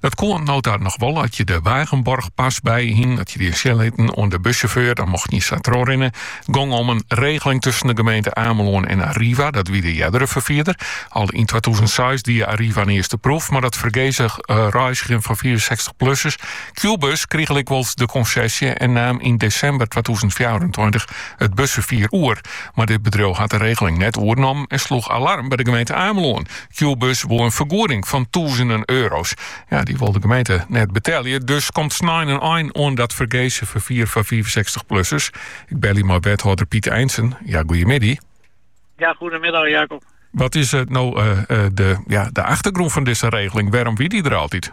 Dat koe no ta noch wol as je de Wagenborgpas by jo hiene. At je dy sjen lieten oan de bussjauffeur, dan mochten je sa trochrinne. Gong om in regeling tusken de gemeente Amelân en Arriva, dat wie de eardere ferfierder. Al yn twatûzen seis die Arriva in earste proef, mar dat fergese eh, reizgjen fan fiifensechtichplussers. Qbuzz krige lykwols de konsesje en naam yn desimber twatûzen fjouwerentweintich it busferfier oer. Mar dit bedriuw hat de regeling net oernommen en sloech alarm by de gemeente Amelân. Qbuzz wol in fergoeding fan tûzenen euro's. Ja, dy wol de gemeente net betelje. Dus komt snein in ein oan dat fergese ferfier fan 65-plussers. Ik belje mei wethâlder Piet IJnsen. Ja, goeiemiddei. Ja, goeiemiddei Jacob. Wat is it eh, nou eh, eh, de, ja, de achtergrûn fan dizze regeling? Wêrom wie dy der altyd?